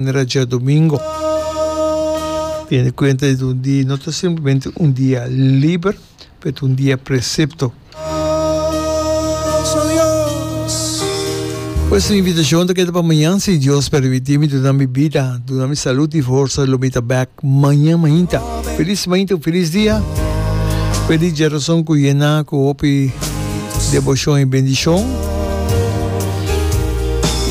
manera dja domingo. Tene cuenta di un dia no ta simplemente un dia liber, pero ta un dia precepto. Pues mi invitacion ta keda pa mañan si Dios permiti mi duna mi bida, duna mi salud y forsa lo mi ta bek mañan mainta. Feliz mañta cu feliz dia. Feliz dje razon cu yena cu hopi debocion y bendicion.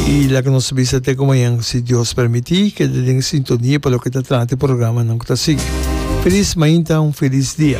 Y laga nos bisa te cu mañan si Dios permiti keda den sintonia pa loke ta trata e programanan cu ta sigui. Feliz mañta, un feliz dia.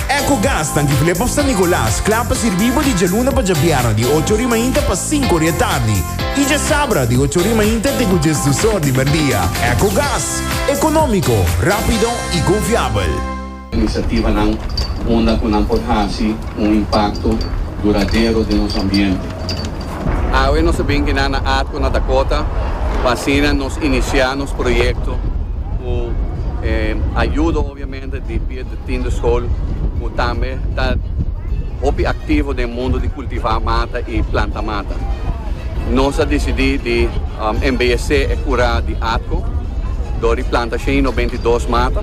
Ecogas ta Antigulé pa San Nicolas, kla pa sirbí bo di djaluna pa djabierna di ocho ori mainta pa sinku ori e tardi i djasabra di ocho ori mainta te ku djes dus or di merdia. Ecogas, ekonómiko, rápido i konfiabel. Inisiativanan unda ku nan por hasi un impakto duradero den nos ambiente. Awe nos a bin kina na Atco na Dakota pa asina nos inisiá nos proyekto ku e ayudo. Presidente di Piet di Tinde Skol ku tambe ta hopi aktivo den mundu di kultivá mata i planta mata. Nos a disidí di embeyesé e kura di atko dor di planta shen i nobenta i dos mata.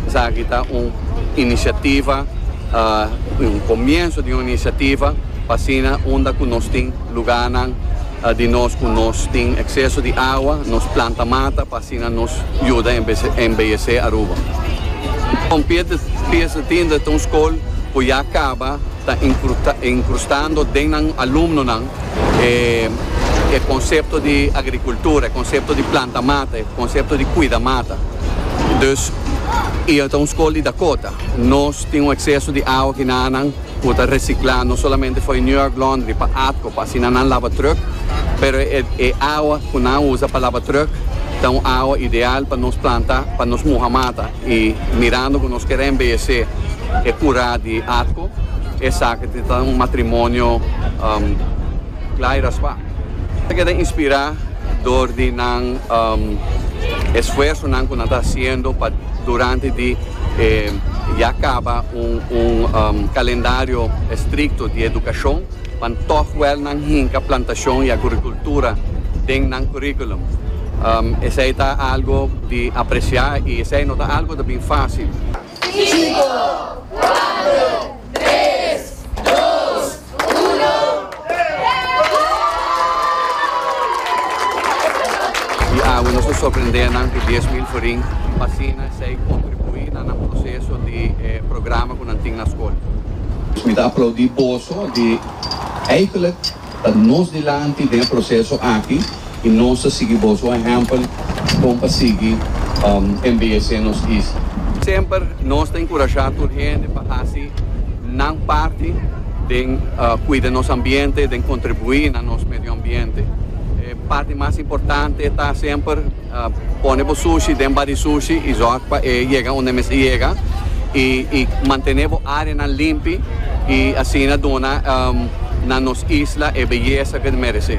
Esaki ta un inisiativa, un komienso di un inisiativa pa asina unda ku nos tin lugánan, Di nos ku nos tin ekseso di awa, nos planta mata pa asina nos yuda embeyesé Aruba. Kon pies di tinda ta un skol ku ya kaba ta inkrustando den nan alumnonan e konsepto di agrikultura, e konsepto di planta mata, e konsepto di kuida mata. Dus i ta un skol di Dakota. Nos tin un ekseso di awa kinanan. Cu ta recicla no solamente fo'i New York Laundry pa atco pa asina nan laba truck, pero e awa cu nan usa pa laba truck ta un awa ideal pa nos planta, pa nos muha mata y mirando cu nos quier embellece e cura di atco esaki ta un matrimonio cla y raspa. Ta keda inspirá dor di nan esfuersonan ku nan ta hasiendo pa durante di e ya kaba un kalendario estrikto di edukashon, pan tòg wèl nan hinka plantashon i agrikultura den nan kuríkulum. Esei ta algu di apresiá i esei no ta algu ta bin fásil. Sinku, kuater, tres, dos. Di awe nos a sorprendé nan ku dies mil forin pa asina esei kontribuí na nan proseso di e programa ku nan tin na skol. Mi ta aplaudí boso di eikelijk ta nos dilanti den e proseso aki. y nos ta sigui boso ehempel bon pa sigui embeyece nos isla. Semper nos ta encurasha tur hende pa haci nan parti den cuida nos ambiente, den contribui na nos medio ambiente. E parti mas importante ta semper pone bo sushi den bodysushi y zorg pa e yega unda e mester yega y mantene bo areanan limpi y asina duna na nos isla e beyeza que ta merece.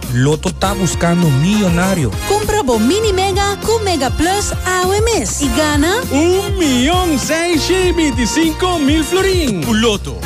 Lotto ta buscando millonario. Cumpra bo Mini Mega cu Mega Plus awe mes y gana. Un mion seis shei binti cinco mil florin. Cu Lotto.